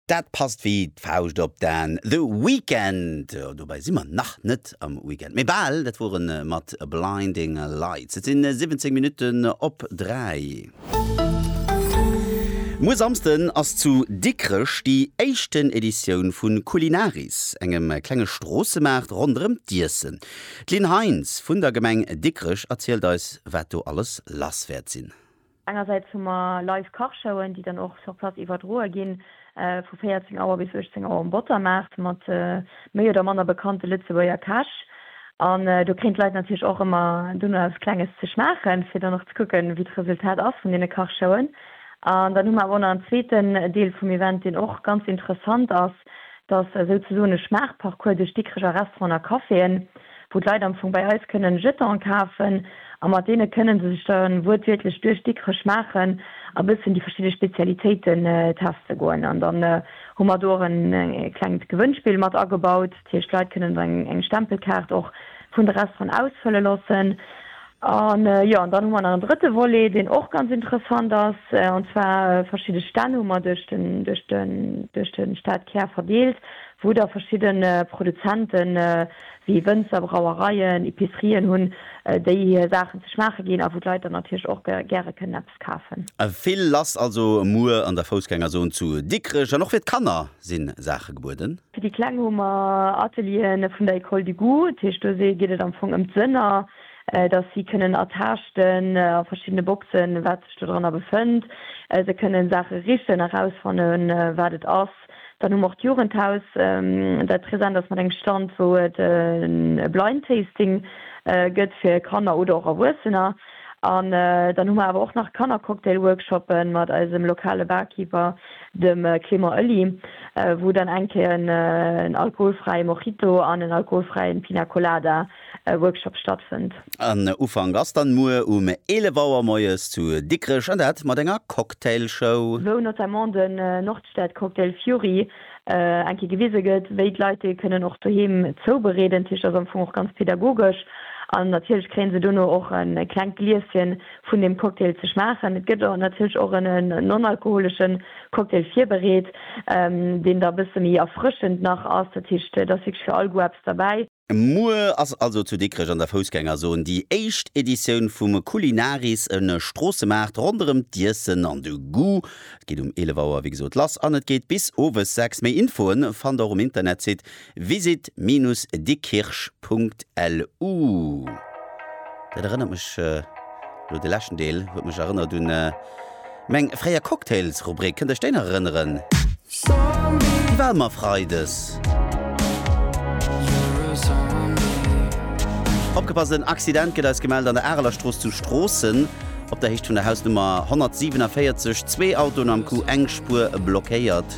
Dat passt wéi d'Fauscht op d'An. The Weeknd, dobäi si mer nach net am Weekend, mee bal. Dat wor en mat Blinding Lights. Et sinn 17 Minutten op 3. Muer Samsden ass zu Dikrech déi éischten Editioun vu Culinaris, engem klenge Stroossemaart ronderëm d'Iessen. D'Lynn Heinz vun der Gemeng Dikrech erzielt eis, wat do alles lass wäert sinn. Engersäits hu mer live Kachshowen, déi dann och sur place iwwerdroe ginn, vu 14 Auer bis 18 Auer um Bottermaart, mat méi oder manner bekannte Lëtzebuerger Käch. An do kréien d'Leit natierlech och ëmmer dunn eppes Klenges ze schmaachen, fir dann och ze kucken, wéi d'Resultat ass vun deene Kachshowen. An dann hu mer awer och nach en zweeten Deel vum Event, deen och ganz interessant ass, Et ass esou ze soen e Schmaachparcours duerch Dikreger Restauranten a Caféen, wou d'Leit am Fong bei eis kënnen Jetanen kafen a mat deene kënnen se sech da wuertwiertlech duerch Dikrech schmaachen a bëssen déi verschidde Spezialitéiten teste goen. An dann hu mer do och e klengt Gewënnspill mat agebaut. Dat heescht, d'Leit kënnen eng Stempelkaart och vun de Restauranten ausfëlle loossen. An jo, an dann hu mer nach en drëtte Volet, deen och ganz interessant ass, an zwar verschidde Stänn hu mer duerch den, duerch den, duerch de Stadkär verdeelt, wou da verschidde Produzenten, wéi Wënzer, Brauereien, Epicerien hunn, déi hir Saachen ze schmaache ginn a wou d'Leit dann natierlech och gäre kënnen eppes kafen. Vill lass also muer an der Foussgängerzon zu Dikrech. An och fir d'Kanner si Saache gebueden. Fir déi Kleng hu mer Atelieren vun der Ecole du Goût, dat heescht do geet et am Fong ëm d'Sënner. dass si kënnen ertaaschten a verschiddene Boxen, wat sech dodranner befënnt, se kënnen Saache richen, erausfannen, wat et ass. Dann hu mer och d'Jugendhaus, dat present ass mat engem Stand, wou et e Blind Tasting gëtt fir Kanner oder och Erwuessener. An dann hu mer awer och nach Kannercocktail-Workshoppe mat eisem lokale Barkeeper, dem Clément Oelly, wou dann eng Kéier en alkoholfräie Mojito an en alkoholfräie Pina Colada Workshop stattfënnt. En Ufank ass dann muer um 11 Auer moies zu Dikrech, an dat mat enger Cocktailshow. Wou notamment den Nordstadcocktail Fury eng Kéier gewise gëtt, wéi d'Leit dee kënnen och doheem zoubereeden. D'Kich ass am Fong och ganz pedagogesch an natierlech kréien se dono och e klengt Glieschen vun dem Cocktail ze schmaachen. Et gëtt natierlech och en non-alkoholesche Cocktail virbereet, deen da e bësse méi erfrëschend nach ass. Dat heescht, et ass wierklech fir all Goût eppes derbäi. Muer ass also zu Dikrech an der Foussgängerzon déi éischt Editioun vum Culinaris, e Stroossemaart ronderëm d'Iessen an de Goût. Et geet um 11 Auer wéi gesot lass an et geet bis owes 6. Méi Infoen fannt der um Internetsite visit-dikkirch.lu. Dat erënnert mech, elo de leschten Deel huet mech erënnert un. Meng fréier Cocktails-Rubrik, kënnt Iech déi nach erënneren? Déi war ëmmer Freides. Opgepasst, en Accident gëtt eis gemellt an der Arelerstrooss zu Stroossen, op der Héicht vun der Hausnummer 147, zwee Autoen am Coup, eng Spuer blockéiert.